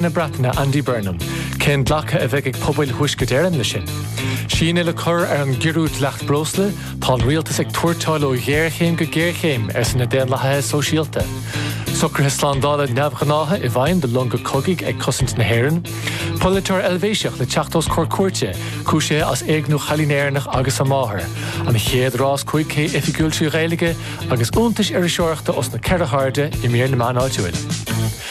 na Breataine Andy Burnham cén glacadh a bheidh ag pobail Thuaisceart Éireann leis sin. Síneadh le cur ar an gciorrú dleacht breosla, tá an rialtas ag tuairteáil ó ghéarchéim go géarchéim, arsa na Daonlathaithe Sóisialta. Socruithe slándála neamhghnácha i bhfeidhm do longa cogaidh ag cosaint na hÉireann. Polaiteoir Eilvéiseach le teacht os comhair cúirte cúisithe as éigniú cailín Éireannach agus a máthair. An chéad rás cúig K oifigiúil trí Ghaeilge agus iontais iriseoireachta os na ceithre hairde i mír na meán áitiúil.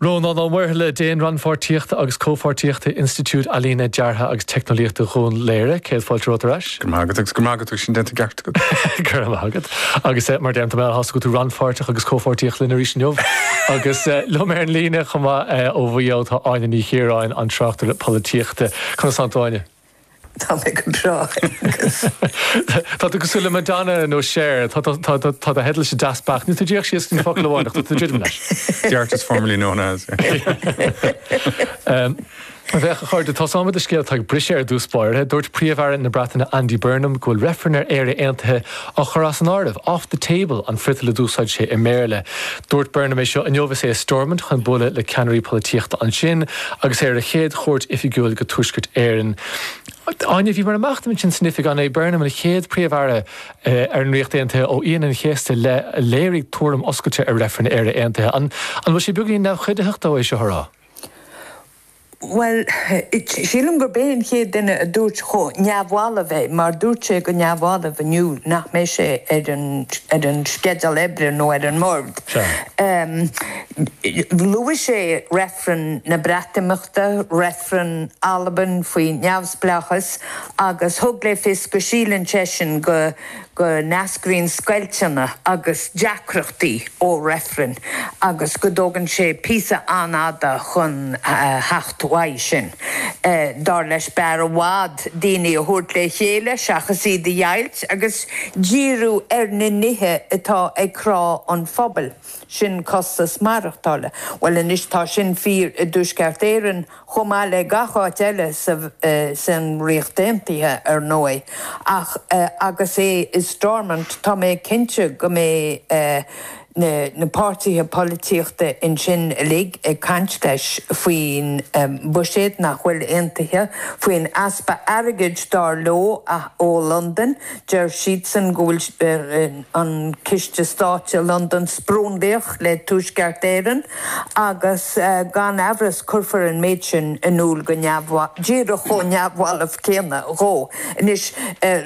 Rónán Ó Muirthile, Déan Rannpháirtíochta agus Comhpháirtíochta, Institiúid Ealaíne, Deartha agus Teicneolaíochta Dhún Laoghaire, céad fáilte romhat ar ais. Go raibh maith agat agus go raibh maith agat agus sin ráite i gceart agat. Go raibh maith agat agus mar a deirim, tá mé an-sásta go bhfuil tú rannpháirteach agus comhpháirteach linn arís inniu. Agus liom ar an líne chomh maith ó Mhaigh Eo, tá Áine Ní Chiaráin, an tráchtaire polaitíochta. Conas atá tú Áine? Tá mé go breá agus. Tá tú cosúil le Madonna nó Cher, tá do theideal sa deasc beacht. Níl tú díreach síos go dtí focal amháin ach tá tú ag druidim leis. The artist formerly known as. Anois a chairde, tosóimid le scéal atá ag briseadh ar dtús báire. Dúirt Príomh-Aire na Breataine Andy Burnham go bhfuil reifreann ar Éire Aontaithe curtha as an áireamh, off the table an friotal a d'úsáid sé i mBéarla. Dúirt Burnham é seo inniu is é i Stormont chun bualadh le ceannairí polaitíochta ansin agus é ar a chéad chuairt oifigiúil go Tuaisceart Éireann. Áine, Bhí, mar a mbeadh, achar san oifig an é Burnham, an chéad Príomh-Aire ar an Ríocht Aontaithe ó Aoine an Chéasta i leith a léirigh tuairim oscailte ar reifreann ar Éire Aontaithe. An bhfuil sé beagáinín neamhchuiditheach dó é seo a rá? Bhuel, sílim gurb é an chéad duine a dúirt chomh neamhbhalbh é, mar dúirt sé go neamhbhalbh inniu nach mbeidh sé ar an sceideal oibre nó ar an mbord. Luaigh sé reifreann na Breatimeachta, reifreann Alban faoi neamhspleáchas agus thug le fios go síleann seisean go go n-eascraíonn scoilteanna agus deacrachtaí ó reifrinn agus go dtógann sé píosa an-fhada chun theacht uaidh sin. Dar leis, b'fhearr i bhfad daoine a thabhairt le chéile seachas iad a dheighilt agus díriú ar na nithe atá ag crá an phobail, sin costas maireachtála. Bhuel anois, tá sin fíor i dTuaisceart Éireann, chomh maith le gach áit eile sa Ríocht Aontaithe, ar ndóigh, ach agus é i Stormont tá mé cinnte go mbeidh na páirtithe polaitíochta ansin uilig ag caint leis faoin bhuiséad nach bhfuil aontaithe, faoin easpa airgid, dar leo, ó Londain. Deir siadsan go bhfuil an Ciste Stáit i Londain sprionlaitheach le Tuaisceart Éireann agus gan amhras cuirfear an méid sin in iúl go neamhbhalbh, díreach chomh neamhbhalbh céanna dhó anois.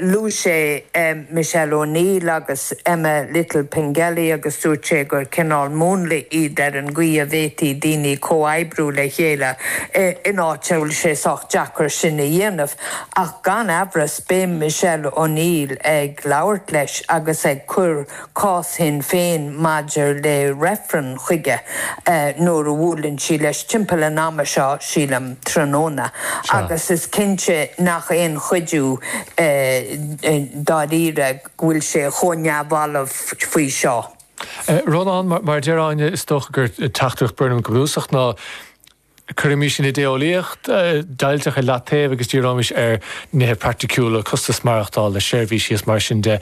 Luaigh sé Michelle O'Neill agus Emma Little Pengelly agus dúirt sé gur cineál múnla iad ar an gcaoi a bhféadfadh daoine comhoibriú le chéile in áit a bhfuil sé sách deacair sin a dhéanamh ach gan amhras Beidh Michelle O'Neill ag labhairt leis agus ag cur cás Shinn Féin maidir le reifreann chuige nuair a bhuaileann sí leis timpeall an ama seo, sílim, tráthnóna, agus is cinnte nach aon chuidiú dáiríre go bhfuil sé chomh neamhbhalbh faoi seo. Rónán, Mar a deir Áine, is dócha gur teachtaireacht Burnham go bunúsach ná, Cuirimis an idé-eolaíocht deighilteach i leataobh agus díreoimis ar nithe praiticiúla, costas maireachtála, seirbhísí is mar sin de.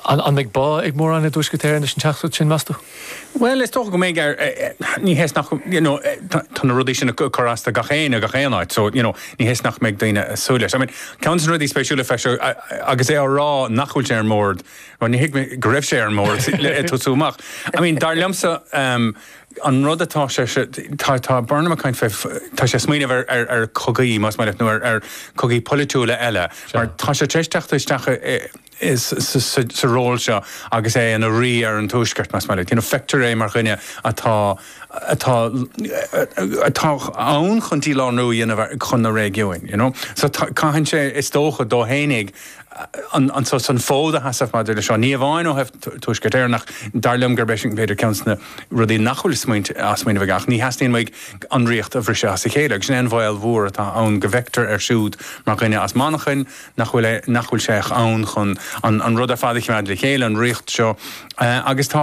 An mbeidh bá ag mórán i dTuaisceart Éireann leis an teachtaireacht sin, meas tú? Bhuel, is dócha go mbeidh. Ní hé nach, you know, tá na rudaí sin ag cur as do gach éinne i ngach aon áit, so, you know, ní hé nach mbeidh daoine ag súil leis. I mean, ceann de na rudaí spéisiúla fé seo, agus é á rá nach bhfuil sé ar an mbord, bhuel, ní thuigim go raibh sé ar an mbord le tosú amach. I mean, dar liomsa, an rud atá sé, tá Burnham ag caint fé, tá sé ag smaoineamh ar chogaí, más maith leat, nó ar chogaí polaitiúla eile, mar tá sé tar éis teacht isteach sa ról seo agus é ina rí ar an Tuaisceart, más maith leat. You know, feictear é mar dhuine atá, atá, atá ann chun dílárú a dhéanamh chun na réigiúin, you know. So caitheann sé, is dócha, dó fhéinig an, an, an fód a sheasamh maidir leis seo, ní amháin ó thaobh Tuaisceart Éireann ach dar liom gurb eisean, b'fhéidir, ceann de na, rudaí nach bhfuil á smaoineamh aige, ach ní theastaíonn uaidh an ríocht a bhriseadh as a chéile, agus sin é an baol mór atá ann, go bhfeictear air siúd mar dhuine as Manchain, nach bhfuil, nach bhfuil sé in ann chun an rud ar fad a choimeád le chéile, an ríocht seo, agus tá.